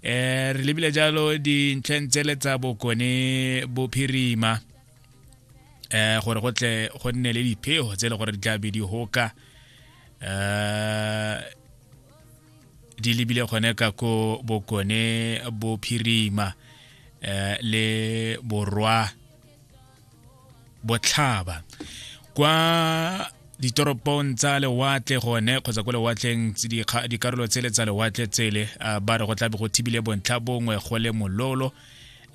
eh re lebile jalo dintlheng tsele tsa bokone bophirima eh gore go tle go nne le diphego tse le gore di tla be di hoka eh di lebile gone ka ko bokone bophirima eh le borwa botlhaba kwa ditoropong tsa lewatle gone kgotsa ko lewatleng dikarolo tsele tsa lewatle tsele uh, ba re go tlabe go thibile bontlha bongwe go le mololo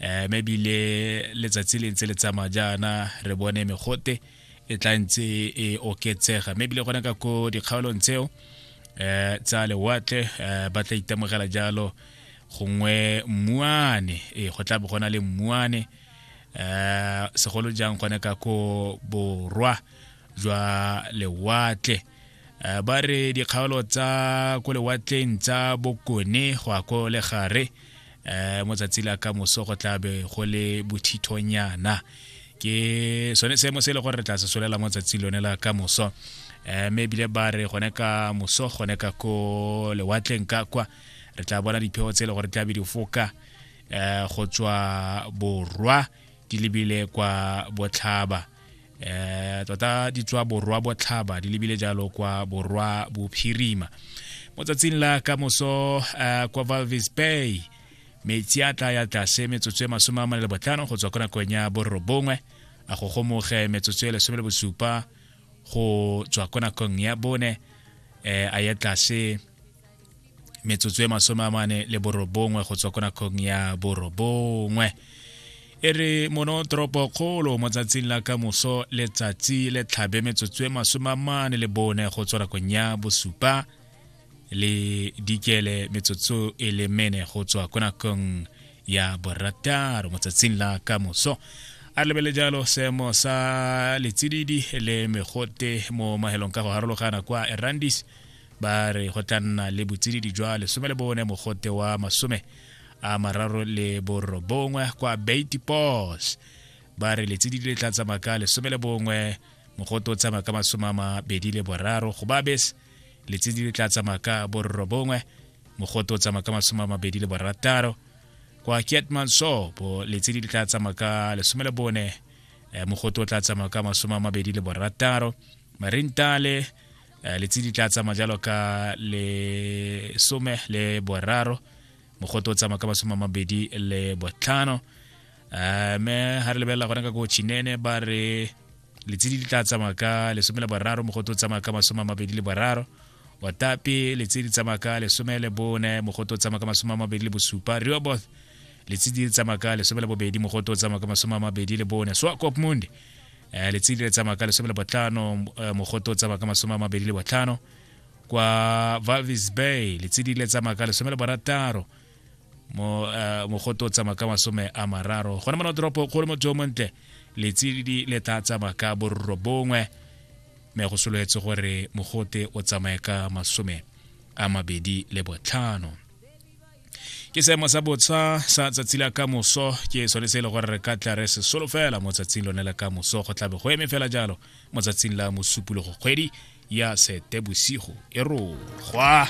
um mme ebile letsatsi le ntse le tsamaya jaana re bone megote e tla ntse e oketsega mme ebile gone ka ko dikgaolong tseo um tsa lewatle um ba tla itemogela jalo gongwe mmuane ee go tlabe go na le mmuane eh segolo jang gone ka ko borwa jwa lewatle eh, ba re dikgaolo tsa ko lewatleng tsa bokone go ya ko legare eh mo tsatsi la ka moso go tla be go le bothithonyana ke sone seemo se e le gore re tla se solela mo tsatsi lone la ka moso eh mme ebile ba re gone ka moso gone ka ko lewatleng ka kwa re tla bona dipheo tse e le gore tla be di foka eh, go tswa borwa di lebile kwa botlhaba eh tota di tswa borwa botlhaba di lebile jalo kwa borwa bophirima mo tsatsing la ka moso eh, kwa valvis bay metsi a tla ya tlase metsotso e masome a mane le botlhano go tswa ko nakong ya borobongwe a go gomoge metsotso e lesome le bosupa go tswa ko nakong ya bone eh, a ya tlase metsotso e masome a mane le borobongwe go tswa ko nakong ya borobongwe e re mono toropo kgolo mo tsatsing la ka moso letsatsi le tlhabe metsotso e masome a mane le bone go tswa nakong ya bosupa le dikele metsotso e le mene go tswa ko nakong ya borataro mo tsatsing la ka moso a re lebele jalo seemo sa letsididi le megote mo mahelong ka go harologana kwa erandis ba re go tla nna le botsididi jwa lesome le bone mogote wa masome a mararo le borobongwe kwa bait pos ba re letsididi le tla tsamaya ka lesome le bongwe mogote o tsamaya ka masome a mabedi le boraro go ba bese letsididi le tla tsamaya ka borobongwe mogote o tsamaya ka masome a mabedi le borataro kwa kiatman sopo letsididi le tla tsamaya ka lesome le bone eh, mogote o tla tsamaya ka masome a mabedi le borataro marintale eh, letsi di tla tsamaya jalo ka lesome le boraro mogote o tsamaya ka masome a mabedi le botlhano eh, me ga re lebelela gone ka ko chinene ba re letsedi di tla tsamaya ka lesome le boraro mogote o tsamaya ka masome a mabedi le boraro otape letsedi tsamaya ka lesome le bone mogote o tsamaya ka masome a mabedi le bosupa reoboth letsedi tsamaya ka lesome le bobedi mogote o tsamaya ka masome a mabedi le bone swakopmund eh, letsedi le tsamaya ka lesome le botlhano eh, mogoto o tsamaya ka masome a mabedi le botlhano kwa valvis bay letsedi le tsamaya ka lesome le borataro mo eh, mogoto o tsamaya ka masome a mararo gone mona toropo kgolo motho o montle letsedi le tla tsamaya ka borro bongwe mme go sololetse gore mogote o tsamaye ka masome a mabedi le botlhano ke seemo sa botsha sa tsatsi la ka moso ke sone se e le gore re ka tla re se solo fela mo tsatsing lone la ka moso go tlabe go eme fela jalo mo tsatsing la mosupologo kgwedi ya setebosigo e rogwa